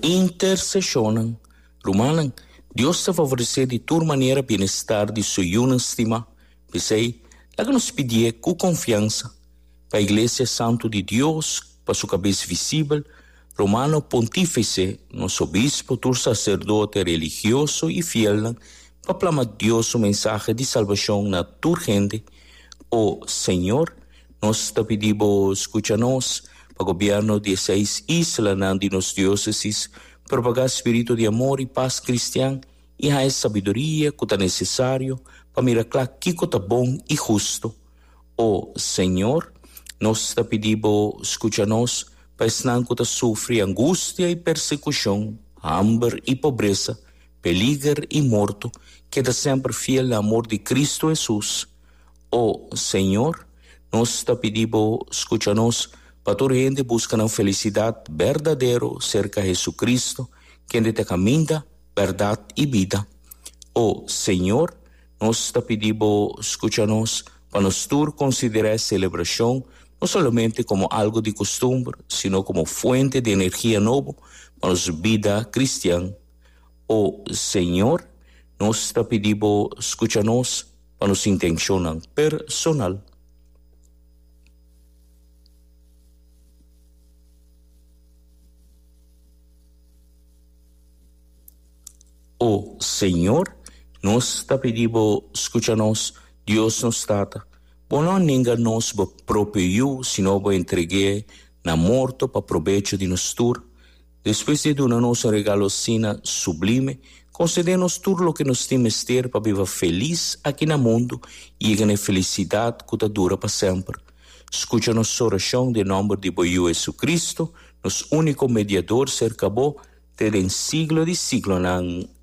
Interseshonnan. Rumannan, Dios ta favoresé di tur manera bienestar di Su yunan stimá. P'esei, laga nos pidié ku konfiansa pa Iglesia santu di Dios, pa su Kabes visibel, Romano Pontífese, nos obispo, tur saserdote religioso i fielnan, pa plama Dios Su mensahe di salbashon na tur hende. O Señor. Nos ta pidi bo skucha nos pa gobièrnu di e seis islanan di nos diósesis propagá spiritu di amor i pas kristian i haña sabiduria ku ta nesesario pa mira kla kiko ta bon i hustu. O Señor, nos ta pidi bo skucha nos pa esnan ku ta sufri angustia i persekushon, hamber i pobresa, peliger i morto, keda semper fiel na amor di Kristu Hesus. O Señor, nos ta pidi Bo scucha nos, pa tur hende busca nan felicidad berdadero cerca Jesucristo, kende t'e caminda, berdad y bida. O Señor, nos ta pidi Bo scucha nos, pa nos tur considera e celebracion no solamente como algo di costumber, sino como fuente di energia nobo pa nos bida cristian. O Señor, nos ta pidi Bo scucha nos, Pa nos intencionnan personal. O Señor, nos ta pidi Bo scucha nos, Dios nos Tata, Bo no a nenga nos Bo propio Yu, sino Bo a entregu'e na morto pa probecho di nos tur. Despues di e duna nos un regalo asina sublime, konsede nos tur loke nos tin mester pa biba felis aki na mundu i yega na e felisidat ku ta dura pa semper. Skucha nos orashon den nòmber di bo Yu Hesukristu, nos úniko Mediador serka bo te den siglo di siglonan.